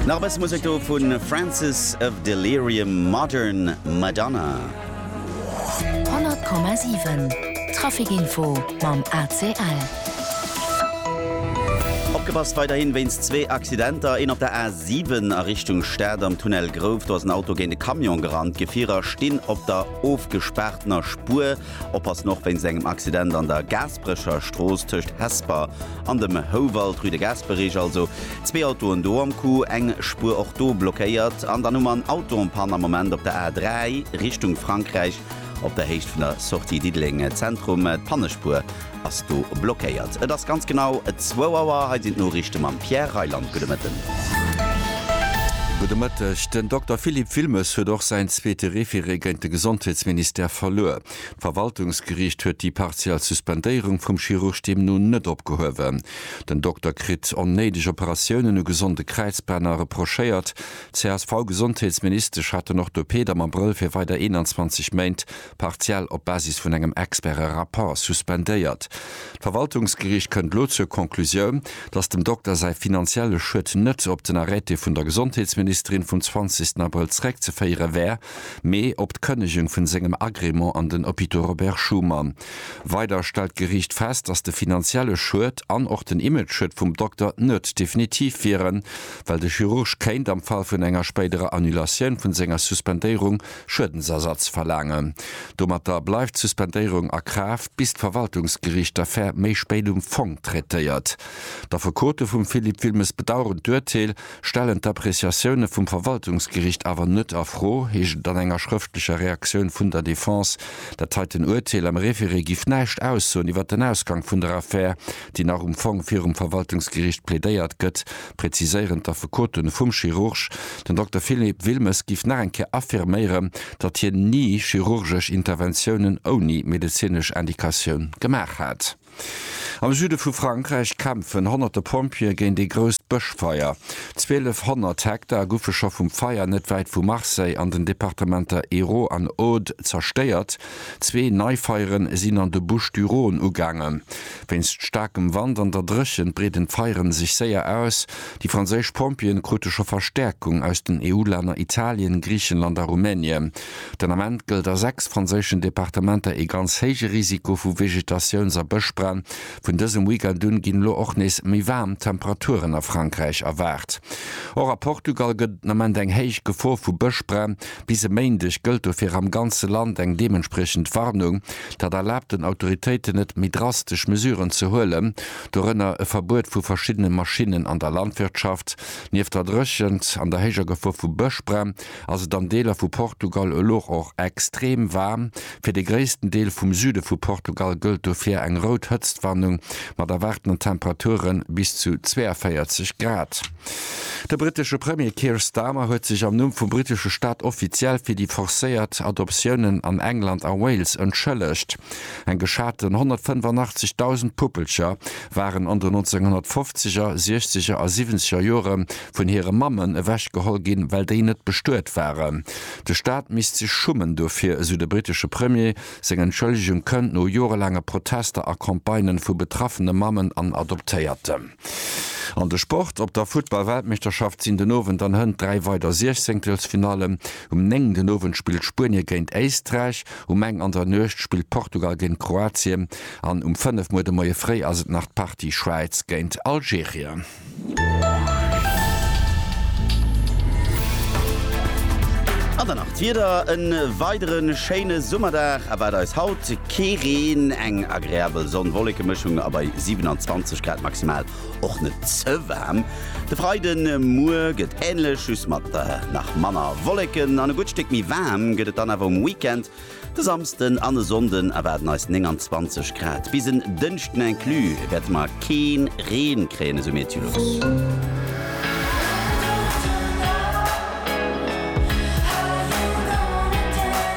Nach e bësse Musek do vu Francis of Delirium, Modern Madonna. 100,7 Traficinfo mam ACL. Opgepasst weiderhin wéinst zwee Accidenter, een op der A7 a Richtung Stad am Tunnel Grouf, do ass en Auto géint e Camion gerannt. D'Gefierer stinn op der ofgespaartener Spuer. Oppassen och wéinst engem Accident an der Gaasperecher Strooss tëscht Hesper an dem Houwald, rue de Gaasperech also. Zwee Autoen do am Coup, eng Spuer och do blockéiert. An dann hu mer en Auto en panne am Moment op der A3 Richtung Frankräich op der Héicht vun der Sortie Diddeleng Zentrum, d'Pannespuer Ass do blockéiert. Et ass ganz genau zwou Auer. Hei sinn d'Noriichte mam Pierre Reyland. Gudde Mëtten. Gudde Mëtteg. Den Dokter Philippe Wilmes huet och säin zweete Référé géint de Gesondheetsministère verluer. D'Verwaltungsgeriicht huet déi partiell Suspendéierung vum Chirurg deemno net opgehuewen. Den Dokter kritt onnéideg Operatiounen u gesonde Kräizbänner reprochéiert. D'CSV-Gesondheetsministesch haten och de Peedam am Brëll fir weider 21 Méint partiell op Basis vun engem experte Rapport suspendéiert. D'Verwaltungsgeriicht kënnt elo zur Conclusioun, datt dem Dokter säi finanzielle Schued net op den Arrêté vun der Gesondheetsministerin vum 20 Abrëll zeréckzeféiere wär, mee op d'Kënnegung vun sengem Agrément an den Hôpitaux Robert Schuman. Weider stellt d'Geriicht fest, datt de finanzielle Schued an och den Imageschued vum Dokter net definitiv wieren, well de Chirurg kéint am Fall vun enger spéiderer Annulatioun vun senger Suspendéierung, Schuedensersatz verlaangen. Domatter bleift d'Suspendéierung a Kraaft, bis d'Verwaltungsgeriicht d'Affär méi spéit um Fong traitéiert. D'Affekote vum Philippe Wilmes bedaueren d'Urteel, stellen d'Appreciatioune vum Verwaltungsgeriicht awer net a Fro, heescht et an enger schrëftlecher Reaktioun vun der Defense. Dat heiten Urteel am Référé giff näischt aussoen iwwer den Ausgang vun der Affär, déi nach um Fong virum Verwaltungsgericht plädéiert gëtt, präziséieren d'Affekote vum Chirurg. Den Dokter Philippe Wilmes géif nach eng Kéier affirméieren, datt hien ni chirurgesch Interventiounen ouni medezinesch Indikatioun gemaach hätt. Am Süde vu Frankräich kämpfen honnerte Pompjeeë géint ee grousst Bëschfeier. 1.200 Hektar goufe scho vum Feier net wäit vu Marseille an den Departementer Hérault an Aude zerstéiert. Zwee nei Feieren sinn an de Bouches du Rhône ugaangen. Wéinst staarkem Wand an der Dréchent breeden d'Feieren sech séier aus. Déi franséisch Pompjeeën krute scho Verstäerkung aus den EU-Länner Italien, Griichenland a Rumänien. Den Ament gëllt a 6 franséischen Departementer ee ganz héije Risiko vu Vegetatiouns a Bëschbränn. Vun dësem Weekend un ginn elo och nees méi waarm Temperaturen a Frankräich erwaart. Och a Portugal gëtt et den Ament eng héich Gefor vu Bëschbränn. Bis e Méindeg gëllt dofir am ganze Land eng deementspriechend Warnung. Dat erlaabt den Autoritéiten net, méi drastesch Mesuren ze huelen, dorënner e Verbuet vu verschiddene Maschinnen an der Landwirtschaft. Nieft der Dréchent an der héijer Gefor vu Bëschbränn ass et an Deeler vu Portugal elo och extrem waarm. Fir de gréissten Deel vum Süde vu Portugal gëllt dofir eng rout Hëtztwarnung mat erwaartenden Temperature bis zu 42 Grad. De brittesche Premier Keir Starmer huet sech am Numm vum brittesche Staat offiziell fir déi forcéiert Adoptiounen an England a Wales entschëllegt. Eng geschaten 185.000 Puppelcher waren an den 1950er, siechzeger a siwwenzeger Jore vun hire Mammen ewech geholl ginn, well déi net bestuet waren. De Staat misst sech schummen dofir, esou de brittesche Premier. Seng Entschëllegung kënnt no jorelaange Protester a Campagnen vu betraffene Mammen an Adoptéierten. An de Sport, Op der Futtball-Weltmeeschterschaft sinn den Owend an Hënt dräi weider Siechzehnktelsfinallen. Um néng den Owend spillt Spuenie géint Éisträich, um eng an der Nuecht spillt Portugal géint Kroatien an um fënnef muer de Moie fréi ass et nach d'Partie Schwäiz géint Algerien. An dann nach d'Wieder, E weidere schéine Summerdag erwaart eis haut. Kee Reen, eng agreabel Sonn-Wollekemëschung a bei 27 Grad maximal och net ze waarm. De Freide Muer gëtt änlech, just mat nach manner Wolleken an e gutt Stéck méi waarm gëtt et dann awer um Weekend. De Samsden an e Sonnden erwaarden eis 29 Grad. Bis en Dënschden inclus wäerte mer kee Reen kréien, esou Meteolux.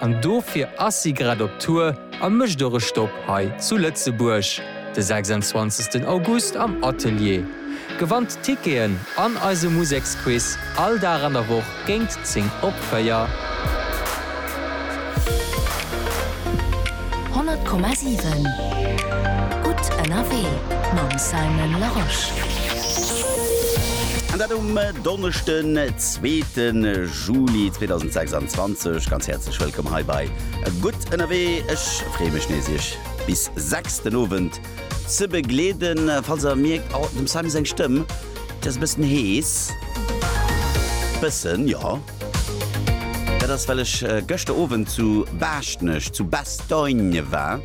An dofir ass si grad op Tour a mécht och e Stopp hei zu Lëtzebuerg de 26 August am Atelier. Gewannt Ticketen an eise Museksquiz all Dag an der Woch géingt 10 op 4. Honnert Komma siwen Gutt ënnerwee mam Simon Larosche. An dat um Donneschden, zweete. Juli 2026 ganz häerzlech wëllkomm hei bei Gutt ënnerwee. Ech freeë mech nees Iech bis 6 den Owend ze begleeden. Falls der mierkt, oh dem Simon seng Stëmm, déi ass e bëssen hees, bëssen, jo, dat ass well ech gëschter Owend zu Baaschtnech, zu Bastogne war,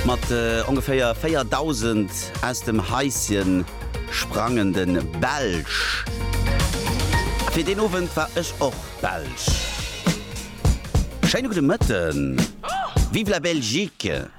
mat ongeféier 4.000 aus dem Haisschen. Sprangende Belsch. Fir deen Owend war ech och Belsch. Schéine gudde Mëtten. Vive la Belgique!